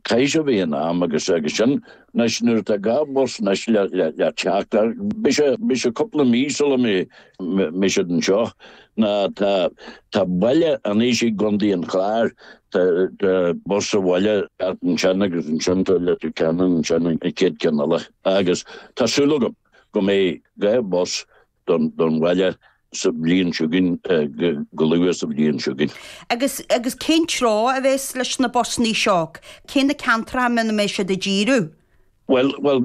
Cúis a bhí in am agus agus sin, anois nuair atá dhá bhus anois le teacht ach beidh sé cúpla mí sula mbeidh siad anseo. Tá baile Inis i gContae an Chláir, tá bus sa bhaile thart ansin agus ansin tá Leitir Ceanainn ansin an chéad cheann eile agus tá súil agam go mbeidh dhá bhus don bhaile sa bhliain seo againn, go luath sa bhliain seo chugainn. Agus, agus cén treo a bheas leis na busanna seo? Cé na ceantracha a mbeidh siad ag díriú air? Bhuel, bhuel,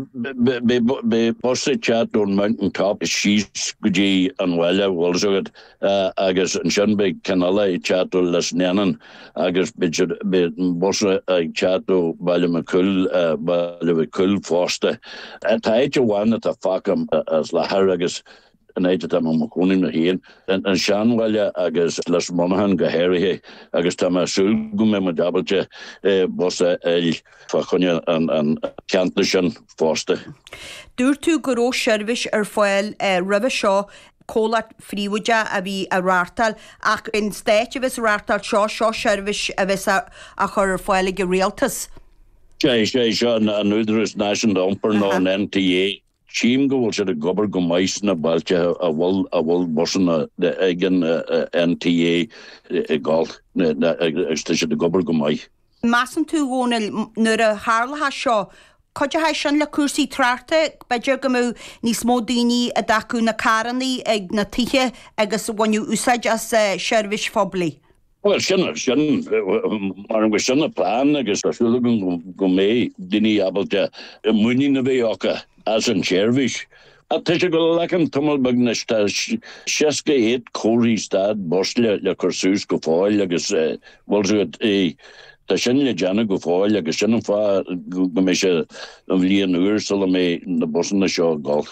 beidh bus ag teacht ón Mountain Top síos go dtí an bhaile, bhfuil fhios agat, agus ansin beidh ceann eile ag teacht ó Lisnannon, Agus beidh bus ag teacht ó Bhaile Mhic Coill, Baile Mhic Coill fosta. Tá áit amháin atá fágtha as faoi láthair agus an áit atá mé i mo chónaí mé féin, an seanbhaile agus Lios Monaghan go háirithe, agus tá mé ag súil go mbeidh muid ábalta bus a fháil fá choinne an cheantair sin fosta. Dúirt tú go raibh seirbhís ar fáil roimhe seo comhlacht phríobháideach a bhí á reáchtáil, ach an stát a bheas á reáchtáil, seo, seo seirbhís a bheas á chur ar fáil ag an rialtas. Is é, is é seo an Údaras Náisiúnta Iompair nó an NTA. Tchím go bhfuil siad ag obair go maith sna bailte a bhfuil a bhfuil busanna ag an NTA ag dul, agus tá siad ag obair go maith. measann tú, Dhónaill, nuair a tharlóchas seo, cuideochaidh sin le cúrsaí tráchta, b'fhéidir go mbeadh níos mó daoine a d'fhágfadh na carrannaí ag na tithe agus a bhaineadh úsáid as seirbhís phoiblí? Bhuel, sin, sin, measaim gur sin an plean agus tá súil agam go mbeidh daoine ábalta muinín a bheith acu as an tseirbhís Ach tá sé ag glacadh tamall beag anois, tá seasca áit comharthaí stad bus le cur suas go fóill agus, bhfuil fhios agat é, tá sin le déanamh go fóill agus sin an fáth go mbeidh sé an bhliain úr sula mbeidh na busanna seo ag dul.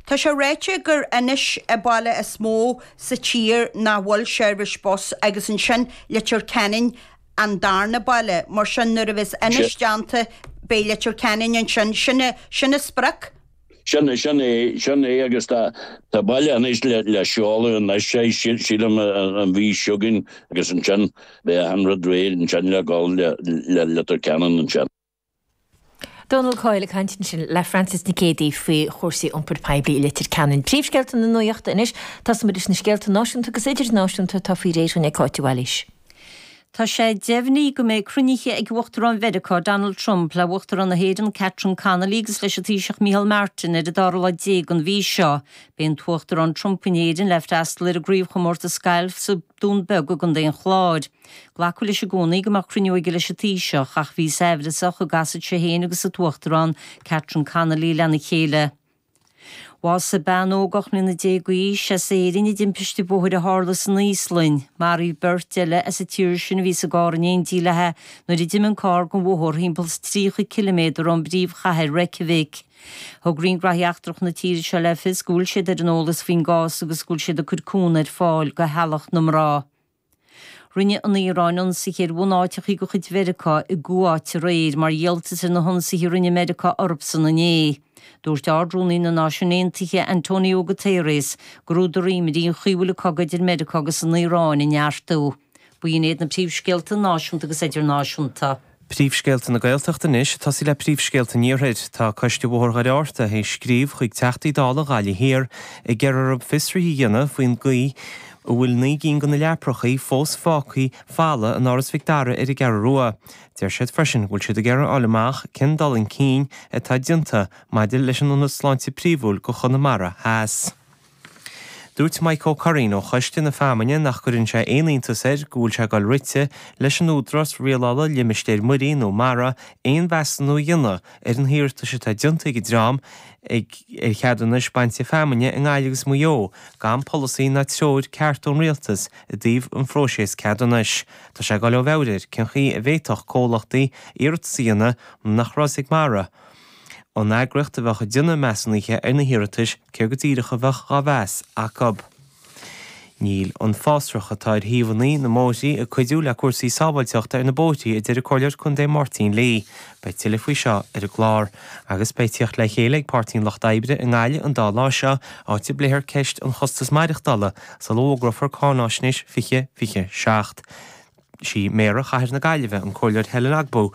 Tá sé ráite gur Inis an baile is mó sa tír nach bhfuil seirbhís bus agus ansin Leitir Ceanainn an darna baile, mar sin nuair a bheas Inis déanta beidh Leitir Ceanainn ansin, sin an sprioc. Sin, sin é, sin é agus tá, tá baile Inis le, le seoladh anois é, sílim an mhí seo chugainn agus ansin beidh achan rud réidh ansin le dhul le, le Leitir Ceanainn ansin. Donal Coyle ag caint ansin le Frances Nic Éadaigh faoi chúrsaí iompair poiblí i Leitir Ceanainn. Príomhscéalta na Nuaíochta anois, tosóimid leis na scéalta náisiúnta agus idirnáisiúnta atá faoi réir againn ag Cáit Mhaoilís. Tá sé deimhnithe go mbeidh cruinnithe ag Uachtarán Mheiriceá Donald Trump le hUachtarán na hÉireann Catherine Connolly agus leis an Taoiseach Micheál Martin ar an dara lá déag den mhí seo. Beidh an tUachtarán Trump in Éirinn le freastal ar an gcraobhchomórtas gailf sa Dún Beag i gContae an Chláir. Glacadh leis i gcónaí go mbeadh cruinniú aige leis an Taoiseach ach bhí sé amhrasach an gcasfadh sé féin agus an tUachtarán Catherine Connolly lena chéile. Bhásaigh bean óg ocht mbliana déag d'aois as Éirinn i dtimpiste bóthair a tharla san Íoslainn. Maraíodh beirt eile as an tír sin a bhí sa gcarr in éindí léi nuair a d'imigh an carr den bhóthar thimpeall 30 ciliméadar ón bpríomhchathair Reykjavik. Thug Roinn Gnóthaí Eachtracha na tíre seo le fios go bhfuil siad ar an eolas faoin gcás agus go bhfuil siad ag cur cúnamh ar fáil do theaghlach na mná. Rinne an Iaráin ionsaithe ar bhunáiteachaí de chuid Mheiriceá i gCuáit aréir mar dhíoltas ar na hionsaithe a rinne Meiriceá orthusan inné. Dúirt Ard-Rúnaí na Náisiún Aontaithe, Antonio Guterres, gurb údar imní an chaoi a bhfuil an cogadh idir Meiriceá agus an Iaráin ag neartú. B'in iad na príomhscéalta náisiúnta agus idirnáisiúnta. Príomhscéalta na Gaeltachta anois, ag tosaí le príomhscéalta an Iarthair. Tá Coiste Bhóthar Dhoire Fhearta ag scríobh chuig Teachtaí Dála Ghaillimh Thiar ag iarraidh orthu fiosruithe a dhéanamh faoin gcaoi a bhfuil naoi gcinn de na leaprachaí fós fágthaí folamh in Áras Mhic Dara ar an gCeathrú Rua. Deir siad freisin go bhfuil siad ag iarraidh a fháil amach cén dul chun cinn atá déanta maidir leis an Ionad Sláinte Príomhúil do Chonamara Theas. Dúirt Mike Ó Curraoin ó choiste na feamainne nach gcuireann sé aon iontas air go bhfuil sé ag dul rite leis an Údarás Rialála Limistéir Muirí nó MARA aon mheasúnú a dhéanamh ar na hiarratais atá déanta ag an dream ar cheadúnais bainte feamainne i nGaillimh agus Maigh Eo gan polasaí ná treoir ceart ón Rialtas i dtaobh an phróiseas ceadúnais. Tá sé ag dul ó mheabhair air cén chaoi a bhféadfadh comhlachtaí iarratas a dhéanamh nuair nach raibh a fhios ag MARA, An eagraíocht a bheadh ag déanamh measúnaithe ar na hiarratais, céard go díreach a bheadh á mheas acu? Níl an fásrach atá ar thaobhanna na mbóithrí ag cuidiú le cúrsaí sábháilteachta ar na bóithrí, a deir an Comhairleoir Contae Máirtín Lee. Beidh tuilleadh faoi seo ar an gclár. Agus beidh teacht le chéile ag Páirtí an Lucht Oibre i nGaillimh an dá lá seo, áit a bpléifear ceist an chostais maireachtála sula bhfógrófar Cáinfháisnéis 2027. Is í Méara Chathair na Gaillimhe, an Comhairleoir Helen Ogbu,